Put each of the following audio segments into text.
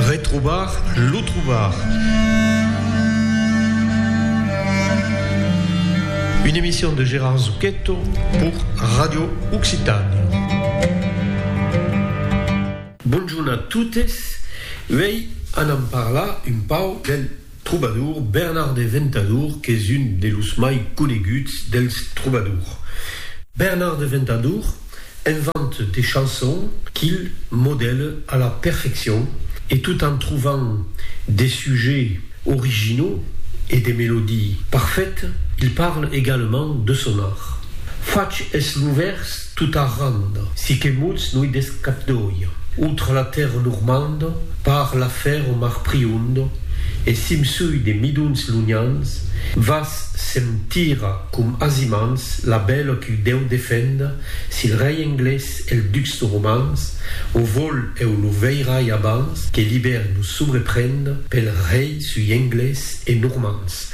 Retrobar lo trobar. Une emission de Gérard Zucchetto pour Radio Occitània. Bonjorn a totes, uèi anam parlar un pauc del. Trobadour, Bernard de Ventadour qu'es un de los mai coneguts dels trobadours. Bernard de Ventadour invente de chansons qu'il modèle a la perfeccion e tot en trobant de sujets originaux e de melodies parfaites, il parle également de son art. Fach es lo vèrs Tot arranda, si que mots no i desc cap d'oia, autra la tèrra normanda, par la fer o mar prionda, e simsui de midons lonhans, vas se'm tira com azimans la bèla qu'u dèu defenda, s'il rei englés e'l ducs romans o vol eu lo veirai abans que l'ibèri lo sobreprenda, pel rei sui englés e normans,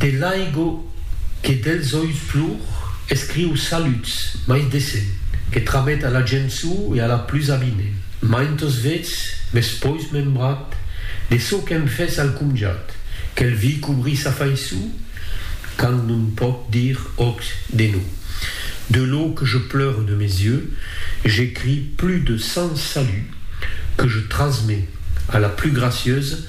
De l'aigo que dels oius plor, escriu Saluts, mai decent, que tramet a la gent suu e a la plus abine. Maint os vets, mes pois membrat, de çò qu'èm fes al comjat, quel vi cobri sa faiçu, quand non pòc dir òc de no. De lo que je pleure de mes yeux, j'écris plus de cent saluts, que je transmets a la plus gracieuse,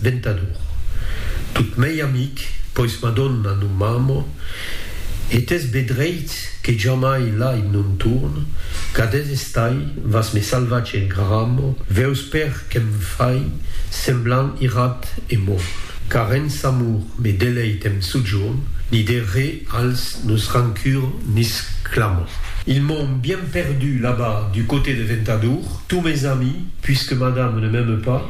Ventador. Tot mei amic, pois Madonna non m'amo, e t'es be dreit que jamai lai non torn, cadés estai, vas me salvatge en gramo, veus per que'm fai semblant irat e morn. Car en s'amor me deleit em sojorn, ni de re als nos rancur n'isclamo. Ils m'ont bien perdu là-bas du coté de Ventador, tous mes amis, puisque Madame ne m'aime pas,